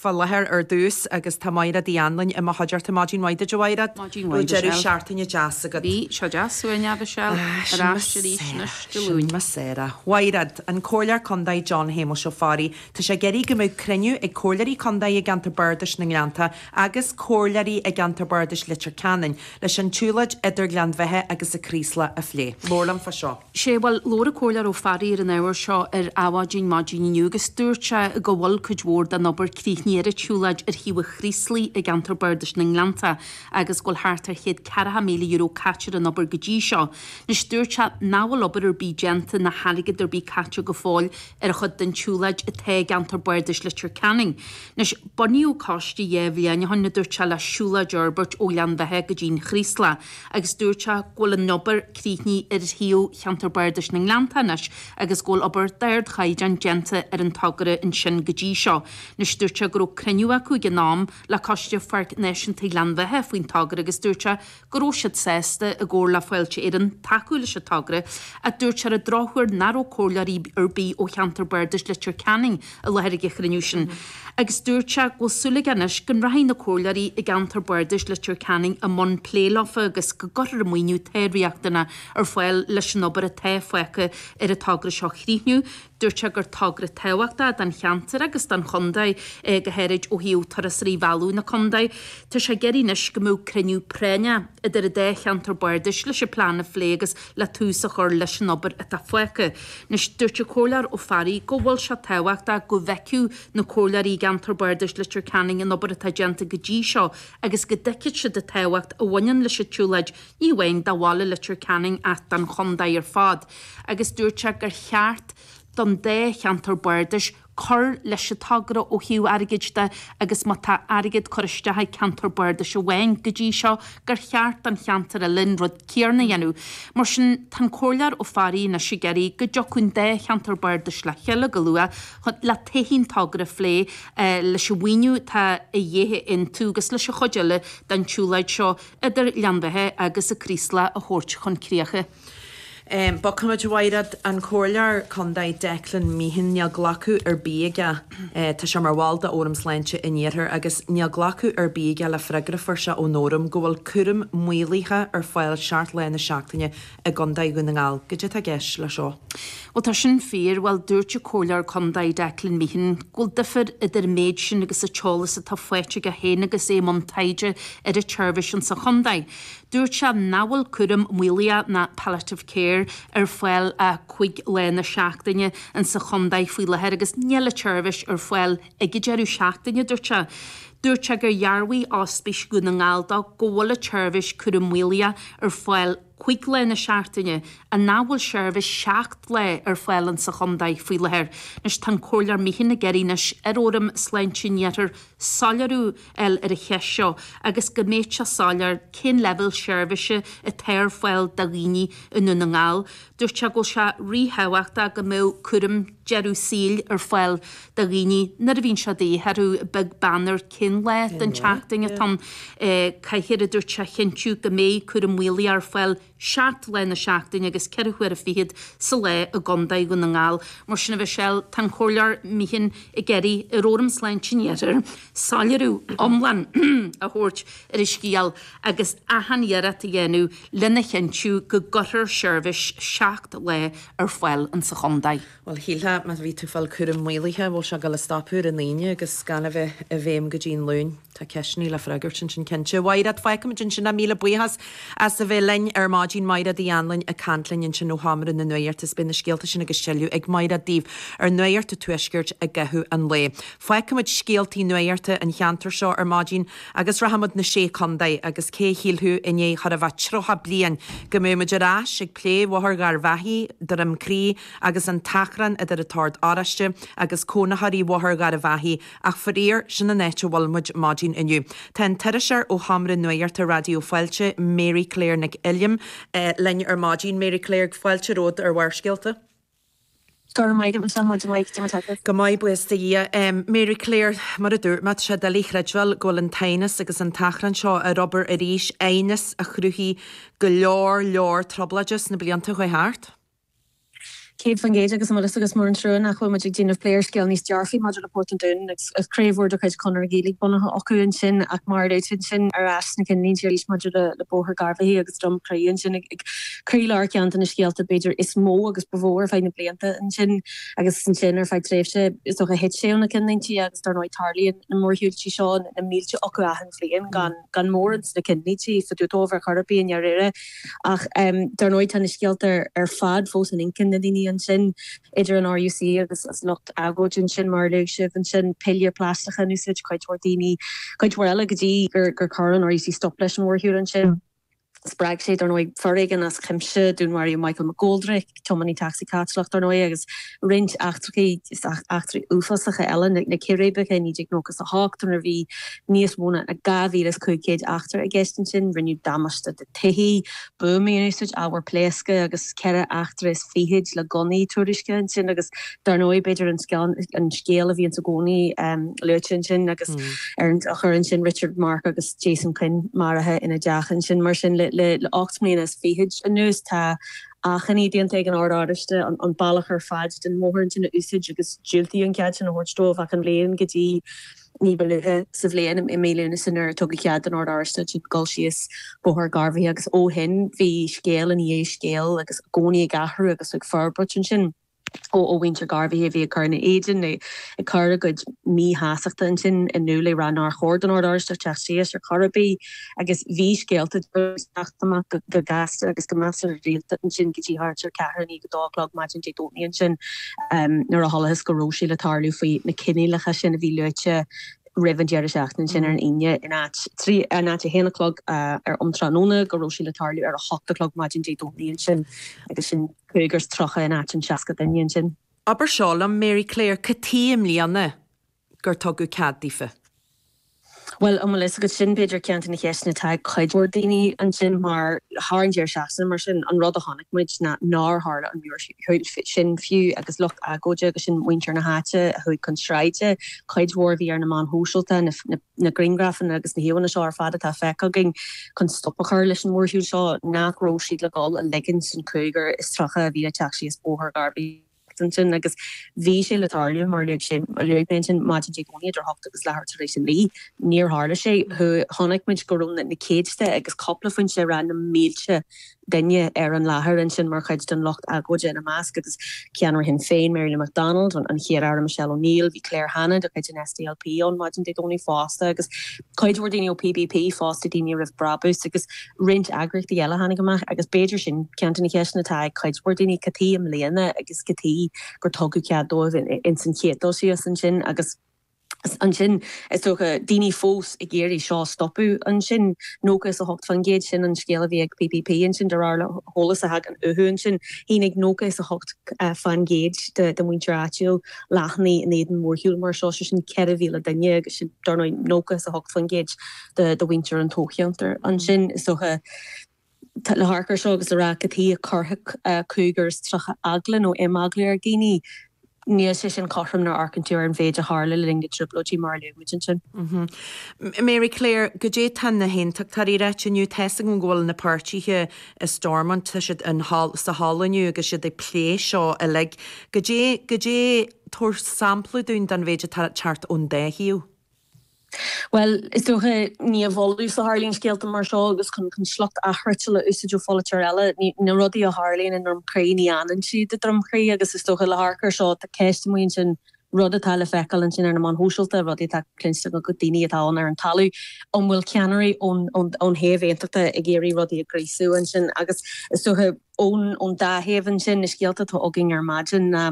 fá láthair ar dtús agus tá Máiréad Uí Anluain i mo chuideachta. Maidin mhaith duit a Mháiréad. Maidin mhaith duit a Mhichelle. An raibh deireadh seachtaine deas agat. Bhí sé deas suaimhneach a Mhichelle. Ar ais arís anois Dé Luain. Sin mo Sarah. A Mháiréad, An Comhairleoir Contae John Shéamuis Ó Fearraigh, tá sé ag iarraidh go mbeadh cruinniú ag Comhairleoirí Contae i gCeantar Bardais na nGleannta agus Comhairleoirí i gCeantar Bardais Leitir Ceanainn leis an tsiúlóid idir Gleann Bheithe agus an Craoslach a phlé. Labhair liom fá seo. Sea, bhuel, labhair an Comhairleoir Ó Fearraigh ar an ábhar seo ar Adhmhaidin maidin inniu agus dúirt sé go bhfuil cuid mhór den obair críochnaithe ar an tsiúlóid ar thaobh an Chraoslaigh i gceantar Bardais na nGleannta agus go bhfuil thart ar chéad ceathracha míle euro caite ar an obair go dtí seo. Anois, dúirt sé nach bhfuil obair ar bith déanta ná hairgead ar bith caite go fóill ar an chuid den tsiúlóid atá i gceantar Bardais Leitir Ceanainn. Anois, bunaíodh coiste dhá bhliain ó shin, a dúirt sé, le siúlóid a fhorbairt ó Ghleann Bheithe go dtí an Chraoslach. agus dúirt sé go bhfuil an obair críochnaithe ar thaobh Cheantar Bardais na nGleannta anois agus go bhfuil obair d'ardchaighdeán déanta ar an togra ansin go dtí seo. Anois, dúirt sé go raibh cruinniú acu ag an am le Coiste Pháirc Náisiúnta Ghleann Bheithe faoin togra agus dúirt sé go raibh siad sásta, i gcomhar le Fáilte Éireann, tacú leis an togra ach dúirt sé ar an drochuair nach raibh comhairleoirí ar bith ó Cheantar Bardais Leitir Ceanainn i láthair ag an chruinniú sin agus dúirt sé go bhfuil súil aige anois go rachaidh na Comhairleoirí i gceantar Bardais Leitir Ceanainn i mbun plé leofa agus go gcuirfear an maoiniú atá riachtanach ar fáil leis an obair atá fágtha ar an togra seo a chríochnú. Dúirt sé gur togra tábhachtach don cheantar agus don chontae é go háirid ó thaobh turasóirí a mhealladh na contae. Tá sé ag iarraidh anois go mbeadh cruinniú práinne idir an dá cheantar bardais leis an plean a phlé agus le tús a chur leis an obair atá fágtha. Anois, dúirt an Comhairleoir Ó Fearraigh go bhfuil sé tábhachtach go bhfeicfeadh na Comhairleoirí i gCeantar Bardais Leitir Ceanainn an obair atá déanta go dtí seo agus go dtuigfeadh siad an tábhacht a bhaineann leis an tsiúlóid, ní amháin do bhaile Leitir Ceanainn ach don chontae ar fad agus dúirt sé gur cheart don dá cheantar bardais cur leis an togra ó thaobh airgid de agus má tá airgead curtha isteach ag ceantar bardais amháin go dtí seo gur cheart don cheantar eile an rud céarna a dhéanamh. Mar sin, tá an Comhairleoir Ó Fearraigh anois ag iarraidh go dtiocfadh an dá cheantar bardais le chéile go luath le todhchaí an togra a phlé leis an mhaoiniú atá a dhíth a aontú agus leis an chuid eile den tsiúlóid seo idir Ghleann Bheithe agus an Craoslach a thabhairt chun críche. Bogfaimid, a Mháiréad, an Comhairleoir Condae Declan Meehan níl glacadh ar bith aige, tá sé mar bhall de Fhóram Sláinte an Iarthair, agus níl glacadh ar bith aige le freagra a fuair sé ón Fhóram go bhfuil cúram maolaithe ar fáil seacht lá na seachtaine i gCondae Dhún na nGall. Goidé atá i gceist leis seo? Bhuel tá sin fíor, bhuel dúirt an Comhairleoir Condae Declan Meehan go bhfuil difear idir an méid sin agus an t-eolas atá faighte aige féin agus é i mbun taighde ar an tseirbhís ansa Chondae. Dúirt sé nach bhfuil cúram maolaithe nó palliative care ar fáil cúig lá na seachtaine in sa chontae faoi láthair agus níl an tseirbhís ar fáil ag an deireadh seachtaine, dúirt sé. Dúirt sé gur dhearbhaigh Ospís Dhún na nGall dó go bhfuil an tseirbhís cúram maolaithe ar fáil cúig lá na seachtaine agus nach bhfuil seirbhís seacht lá ar fáil in sa chontae faoi láthair. Anois tá an Comhairleoir Meehan ag iarraidh anois ar fhóram sláinte an iarthair soiléiriú a fháil ar an cheist seo agus go mbeadh sé soiléir cén leibhéal seirbhíse atá ar fáil do dhaoine i nDún na nGall. Dúirt sé go bhfuil sé ríthábhachtach go mbeadh cúram deireadh saoil ar fáil do dhaoine nuair a bhíonn sé de dhíth orthu, beag beann ar cén lá den tseachtain atá ann. Caithfear, a dúirt sé, a chinntiú go mbeidh cúram maolaithe ar fáil, 7 lá na seachtaine agus 4 huaire fichead sa lá i gContae Dhún na nGall. Mar sin a Mhichelle, tá an Comhairleoir Meehan ag iarraidh ar Fhóram Sláinte an Iarthair soiléiriú iomlán a thabhairt ar an scéal agus achan iarracht a dhéanamh lena chinntiú go gcuirfear seirbhís 7 lá ar fáil insa Chontae. Bhuel, shílfeá, má bhí tú ag fáil cúram maolaithe, bhfuil sé ag gabháil a stopadh ar an Aoine agus gan a bheith i bhfeidhm go dtí an Luan? Tá ceisteannaí le freagairt ansin cinnte. Mhaighreád, fágfaimid ansin é. Míle buíochas as a bheith linn ar maidin, Maighreád Ní Anluain ag caint linn ansin ó Sheomra na Nuachta is beidh na scéalta sin agus tuilleadh ag Maighreád daoibh ar Nuacht an Tuaiscirt i gcaitheamh an lae. Fágfaimid scéaltaí nuachta an cheantair seo ar maidin agus rachaimid na Sé Contae agus cé a shílfeadh i ndiaidh chóir a bheith 30 bliain go mbeadh muid ar ais ag plé Bhóthar Gharbh Achaidh, Droim Crí, agus an t-achrann idir an tOrd Oráiste agus cónaitheoirí Bhóthar Gharbh Achaidh, ach faraor, sin an áit a bhfuil muid ar maidin inniu. Tá an t-iriseoir ó Sheomra Nuachta Raidió Fáilte, Mary Claire Nic Uilliam, linn ar maidin. Mary Claire, fáilte romhat ar Bharrscéalta. Go raibh maith agat, maidin mhaith Cad é mar atá sibh. Go maith, buíochas de Dhia. Mary Claire, mar a dúirt mé, tá sé doiligh a chreidbheáil go bhfuil an t-aighneas agus an t-achrann seo ar obair arís, aighneas a chruthaigh go leor leor trioblóide sna blianta a chuaigh thart. 100% agus an bhfuil fhios agat, is mór an trua nach bhfuil muid ag déanamh plé ar scéal níos dearfaí maidir le Port an Dúin agus craobh mhór de chuid Chonradh na Gaeilge bunaithe acu ansin ach mar a luaigh tú ansin ar ais sna cinnlínte arís maidir le Bóthar Garbh Achaidh agus Droim Crí ansin ag croílár ceann de na scéalta b'fhéidir is mó agus ba mhó ar feadh na blianta ansin agus ansin ar feadh tréimhse is dócha thit sé ó na cinnlínte agus dar ndóigh tarlaíonn na mórshiúltí seo na mílte acu achan bhliain gan mórán de na cinnlínte fá dtaobh dóibh ar chor ar bith i ndáiríre. Ach dar ndóigh tá na scéalta ar fad fós in intinn na ndaoine ansin, idir an RUC agus an lucht agóide ansin, mar a luaigh sibh, ansin piléir plaisteacha in úsáid caite ar dhaoine, cuid mhór eile go dtí gur chuir an RUC stop leis an mhórshiúl ansin. Spreag sé, dar ndóigh, foréigean as cuimse, dúnmharaíodh Michael McGoldrick, tiománaí tacsaí Caitliceach, dar ndóigh, agus roinnt eachtrachaí, eachtraí uafásacha eile, na círéibeacha i 1998, nuair a bhí níos mó ná 2,500 eachtra i gceist ansin, rinneadh damáiste do tithí, buamaí in úsáid, ábhar pléasctha, agus ceithre eachtra is fichid le gunnaí tuairiscithe ansin, agus dar ndóigh, b'fhéidir an scéal, an scéal a bhíonns i gcónaí luaite ansin, agus ar an drochuair ansin, Richard, Mark agus Jason Quinn maraithe ina dteach ansin. Mar sin, le ocht mbliana is fichid anuas, tá achainí déanta ag an Ord Oráisteach an bealach ar fad den mbóthar ansin a úsáid agus diúltaíodh an cead sin a thabhairt dóibh ach an bhliain go dtí ní ba luaithe sa bhliain, i mí Lúnasa nuair a tugadh cead don Ord Oráisteach ansin dul síos Bóthar Gharbhachaidh agus ó shin bhí scéal i ndiaidh scéal agus i gcónaí ag athrú agus ag forbairt ansin. ó mhuintir Gharbhachaidh a bhí ag cur ina éadan nó ag cur a gcuid míshástachta ansin in iúl ag rá nár chóir don Ord Oráisteach teacht síos ar chor ar bith agus bhí scéalta ag teacht amach go gasta agus go measartha rialta ansin go dtí thart ar cheathrú i ndiaidh a dó a chlog maidin Dé Domhnaigh ansin nuair a chualathas go raibh sé le tarlú faoi na coinníollacha sin a bhí luaite roimh an deireadh seachtaine ansin ar an Aoine in áit a haon a chlog um tráthnóna go raibh sé le tarlú ar a hocht a chlog maidin Dé Domhnaigh ansin agus sin cúigear agus 30 in áit an 60 duine ansin. Abair seo liom, Mary Claire, cad chuige i mbliana gur tugadh cead daofa? Bhuel, an bhfuil fhios agat, sin b'fhéidir ceann de na ceisteanna atá ag cuid mhór daoine ansin mar, thar an deireadh seachtaine mar sin, an rud a chonaic muid ná nár tharla an uair sin fiú agus lucht agóide agus sin muintir na háite a chuaigh chun sráide, cuid mhór a bhí ar na meáin shóisialta, na. na grianghrafanna agus na híomhánna seo ar fad atá feicthe againn chun stop a chur leis an mórshiúl seo, nach raibh siad le dhul a ligint don chúigear is tríocha a bhí ag teacht síos Bóthar Gharbhachaidh ansin agus bhí sé le tarlú mar a luaigh sé, a luaigh mé ansin, maidin Dé Domhnaigh idir hocht agus leathuair tar éis a naoi. Níor tharla sé. Chonaic muid go raibh na céadta agus cúpla foinse ag rá na mílte duine ar an láthair ansin mar chuid den lucht agóide, ina measc agus ceannaire Shinn Féin, Mary Lou McDonald, an Chéad-Aire Michelle O'Neill, bhí Claire Hanna de chuid an SDLP ann maidin Dé Domhnaigh fosta agus cuid mhór daoine ó PBP fosta, Daoine Roimh Brabús agus roinnt eagraíochtaí eile a tháinig amach agus b'fhéidir sin ceann de na ceisteanna atá ag cuid mhór daoine, cad chuige i mbliana agus cad chuige gur tugadh cead dóibh ins an chéad dul síos ansin agus. ansin, is dócha, daoine fós ag iarraidh seo a stopadh ansin. 98% sin an scéal a bhí ag PBP ansin de réir eolas a thagann uathu ansin. Shínigh 98% de mhuintir áitiúil leathanaigh in éadan mórshiúl mar seo, sé sin 4,000 duine agus sin, dar ndóigh, 98% de mhuintir an toghcheantair ansin, is dócha. Le hamharc ar seo agus a rá cad chuige a gcuirfeadh cúigear is tríocha eagla nó imeagla ar dhaoine, níl sé sin cothrom nuair a amharcann tú ar an mhéid a tharla le linn na dtrioblóidí mar a luaigh muid ansin. Mary Claire, Goidé tá na hAontachtóirí a ráit inniu? Tá's agam go bhfuil na páirtithe i Stormont, tá siad in hall, sa hall inniu agus siad ag plé seo uilig. Goidé, goidé, tabhair sampla dúinn den mhéid atá thart ón dá thaobh. Bhuel, is dócha, ní i bhfolús a tharlaíonn scéalta mar seo agus chun sliocht athfhriotail a úsáid ó pholaiteoir eile, na rudaí a tharlaíonn i nDroim Crí, ní fhanann siad i nDroim Crí agus is dócha le hamharc ar seo, tá ceist amuigh ansin, rud atá le feiceáil ansin ar na meáin shóisialta, rudaí atá cluinste ag daoine atá ann ar an talamh, an bhfuil ceannairí ón taobh aontachta ag iarraidh rudaí a ghríosú ansin agus is dócha ón dá thaobh ansin, na scéalta atá againn ar maidin ná.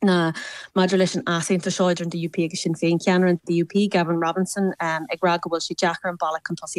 ná maidir leis an easaontas seo idir an DUP agus Sinn Féin, ceannaire an DUP, Gavin Robinson, ag rá go bhfuil sé deacair an bealach chun tosaigh a